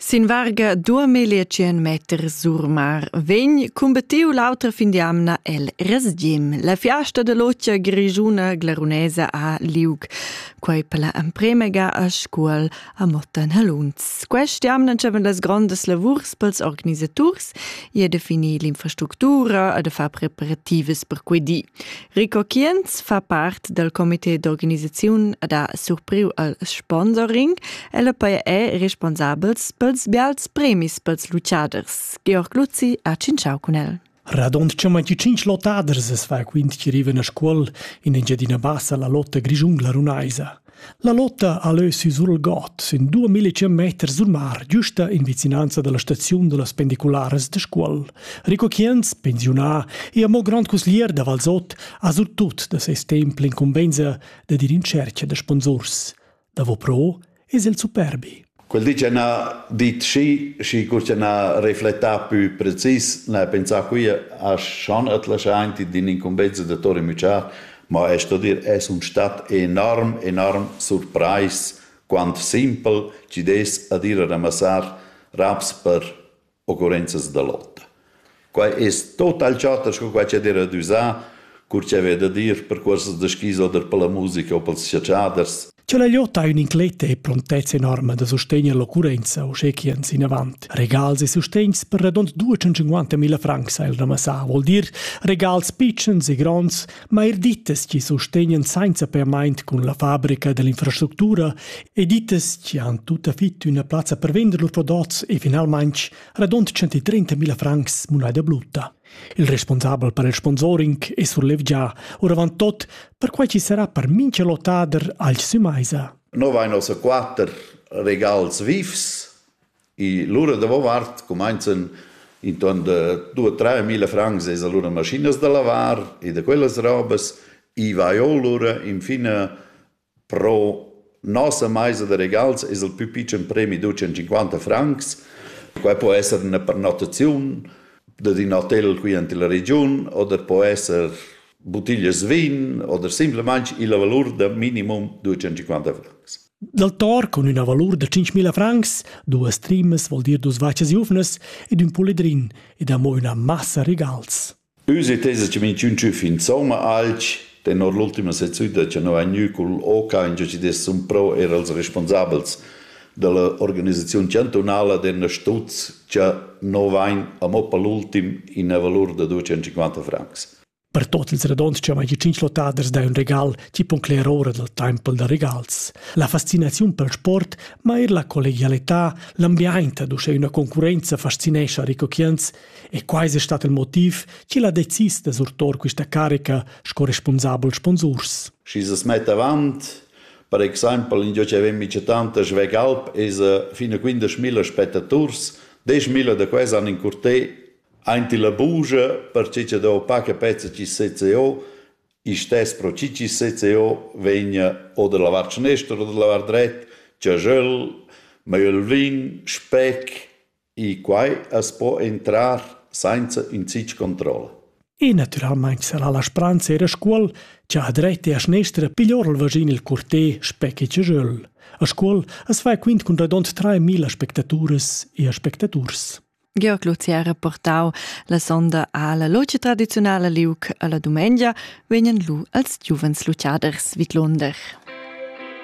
Sin varga duamillia tschien meter surmar vegn cumbattiu l'autra fin d'jamna el Resgim. La fiasta de lotia grigiuna glarunesa a liug. Quei per la emprema ga a scuol a Motta Haluns. Quest jamna havevan las grondas lavurs pels organisaturs e de finir l'infrastructura e de far preparativas per quei di. Rico Kienz fa part dal comité d'organisaziun da surpriu al sponsoring. El poi è responsabels pels bials premis pels lucaders. Georg Luzzi ha cinciau cun el. Radond ce mai 5 lotaders es va quint chi rivan a scuol in Engiadina Bassa la lotta grigiungla runaisa. La lotta ha leu siu sulgot sin duamilla tschient meters sul mar giusta in vicinanza dalla staziun dallas pendicularas da Scuol. Rico Kienz, pensiunà e amo grand cusglier da Valsot, ha surtut da ses temp l'incumbensa da dir in tscherca da sponsurs. Davo pro es el superbi. Quel di che na dit schi, schi cur che na reflectà pü precis, na pensà qui a schon at laschaint in incumbenza da Tori Müchar, ma es sto dir, es un stat enorm, enorm surprais, quant simpel chi'd es ad ir a ramassar raps per occurrenzas da lotta. Quai es total chatta sco quai ch'ed era düsà, cur cha vè da dir per cuorsas da skis oder per la musica o pels chatschiaders. Cha la lotta ha ün'incletta e prontezza enorma da sustegner l'occurrenza uschè chi ans inavant. Regals e sustegns per radund 250.000 francs ha el ramassà, vuol dir regals pitschens e gronds Ma er dittas chi sustegnan sainza permaint cun la fabrica dell'infrastructura e dittas chi han tutta fit üna plazza per vender lur prodots e finalmaing radund 130.000 francs muneda brutta. Il responsabel per il sponsoring è surlevgià, oravant tot, perquai chi sarà per mincha lotader alch sümaisa. Noi vain ossa quatter regals vifs, E lura davovart cumainzan intuorn da due, tre mila francs es alura maschinas da lavar e da quellas robas. I vai o lura infin pro nossa maisa da regals es il pü pitschen premi du 150 francs. Quai po esser üna pernottaziun dad ün hotel qui ant illa regiun oder po esser buttiglias vin oder simplamaing illa valur da minimum 250 francs. Dal tor cun üna valur da 5.000 francs, duas trimas vol dir dus vachas giuvnas ed ün pulidrin ed amo üna massa regals. Üs e tesa che min chun tschüf insomma alch tenor l'ultima sezzüda che no ha gnü cul OCA in ci des sun pro er als responsabels dalla organisaziun chantunala den Stutz che no vain amo per l'ultim in una valur da 250 francs. Per tot ils radons che mai tschinch lottaders dai un regal, ti pon cler ora dal tempel da regals. La fascinaziun pel sport, ma er la collegialità, l'ambiaint ad uschè üna concurrenza fascinescha ricochients e quai es stat il motiv chi l'ha decis da surtor quista carica sco responsabel sponsurs. Schi se mett avant, per exaimpel in giò chi avem mice tantas svegalp es fin a 15.000 spettaturs, 10.000 da quels han in curtè Aint illa bugia, perche cha do paca pezza chi sezza eau, istess pro chi chi sezza eau vegna o da lavar schnestra o da lavar dret, giaschöl, maiel vin, spec, i quai as po intrar sainza ün zich controlla. E natüralmaing sarà la spranza eir a Scuol cha a dretta e a schnestra piglior il vaschin il curtè spec e giaschöl. A Scuol as fa quint cun radond traimila spectaturas e aspectaturs. Georg Luzi ha reportau la sonda alla loce tradiziunala liuc alla dumengia vegnan lu als giuvens luciaders vidlunder.